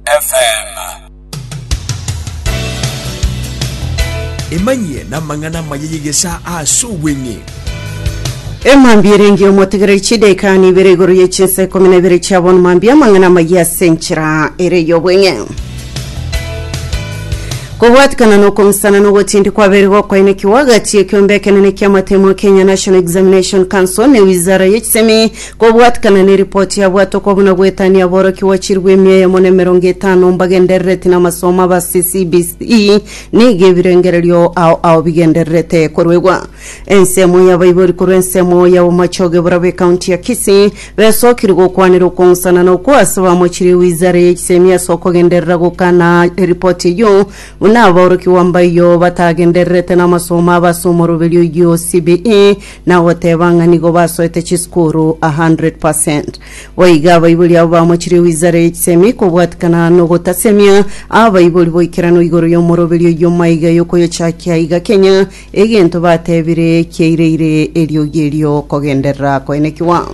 FM. Emanyie namang'ana amaya y'egesaa ase obweng'e. Emambia erenge omotegereri chidaika nibere igoro ye chinsa ikomi na ibere chia bono mambia amang'ana amaya ase enchera ere y'obweng'e kobwatikana nokomusana nogotindi kwabere gokwaenekiwa agati ekiombe ekenene kiamatemo Kenya National Examination Council ne wizara ye chisemi Kobwatikana neripoti yabwatwa kwa buna goetania aborokia gwachirigwe emia eyemo na emerongo etano mbagenderereti namasomo aba ase CBCE nigo ebirengererio ao ao bigendererete koruegwa. Ensemo y'abaibori korwa ensemo y'abomachoge barabwo ecounty ya Kisii besokire gokwanera okong'usana na okwo ase bamochire ewizara y'echisemi ase okogenderera gokana eripoti eyio buna aborokia gwamba eyio batagendererete namasomo aba ase omoroberio oyio CBE na ogoteba ng'a nigo basoete chisukuru a hundred per cent. Boigo abaibori abo bamochirie gwizera egisemi kobwatikana nogotasemia abaibori boikerano igoro y'omoroberio oyio maiga yokoyochakia iga kenya egento batebire kiaireire eriogi erio kogenderera koenekigwa.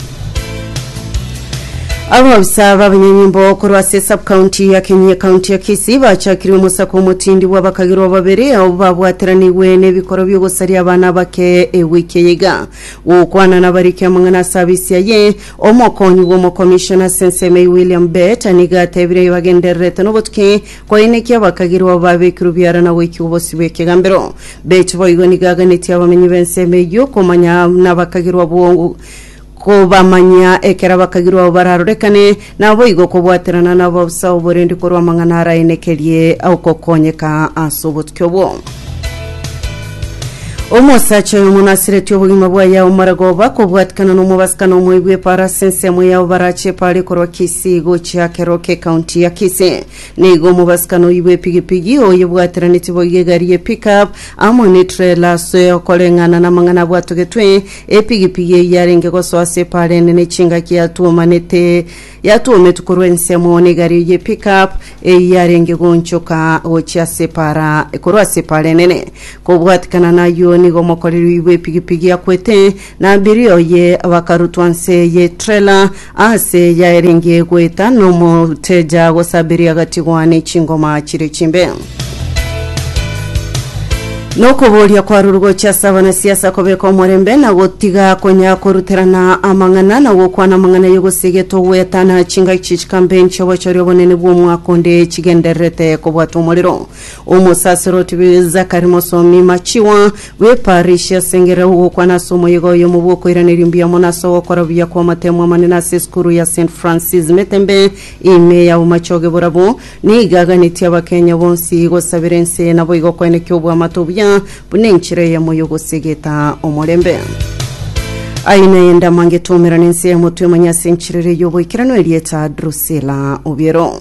Abaofisa b'abanyanyimbo korwa ase esabkaunti ya Kenya ekaunti ya Kisii bachakirie omosako omotindi bw'abakagirwa babere ao babwateranigwe n'ebikoro by'ogosaria abana abake ewiki eye iga. Gokwana nabariki amang'ana ase abisi aye, omokonyi bw'omokomishona ase ensemo eye William Bett nigo atebire bagendererete n'obotuki koinekia abakagirwa babekirwe biara na goikigwa bosio bw'ekegambero. Bett boigo nigo aganetie abamenyi b'ensemo eyio komanya nabakagirwa abwo Kobamanyia ekero abakagirwa abo bararorekane, naboigo kobwaterana nabo bosa oborendi korwa amang'ana araenekerie ogokonyeka ase obotuki obwo. Omosacha oyomo nasireti obogima bwaye aomare goba kobwatikana nomobasikani omoigwa epara ase ensemo yabo barache epara ekorwa Kisii gochia Keroka ekaunti ya Kisii. Nigo omobasikani oigwa epigipigi oyebwateraneti boigo egari ye pick up amo netrela ase okoreng'ana namang'ana abwatogetwe Epigipigi eyio yarenge gosoa ase epaara enene chingaki yatwomanete, yatwometwe korwa ensemo n'egario y'epickup eyio yarenge goonchoka gochia ase epaara korwa ase epaara enene. Kobwatikana nayio nigo omokoreri oyibo epigipigi akwete, na abiria oye bakarutwa nse ye trela, Aase yaerenge goeta nomoteja gosaberia gatigwa ne chingoma chire chimbe. Nokoboria kwarure gochia ase abanasiasa kobeka omorembe na gotiga konya koruterana amang'ana na gokwana amang'ana y'ogosigetwa goetana chingaki chikambe nch'obochoria obonene bw'omwaka onde chigendererete kobwata omorero. Omosaseroti Zakari Mosomi Machiwa bw'eparishi asengera ogokwana ase omoyega oyomo bw'okoiraneria mbuya mono ase ogokora buya kw'amatemo amanene ase esukuru ya St Francis Metembe ime ya Bomachoge Borabwo nigo aganetie Abakenya bonsi gosabera ense naboigo koenekia obwamato obuya buna enchera eyemo y'ogosegeta omorembe. Aye naye ndamangete omerane ense y'emotwe emanye ase enchera ere y'oboikeranu erieta Drusilla Obiero.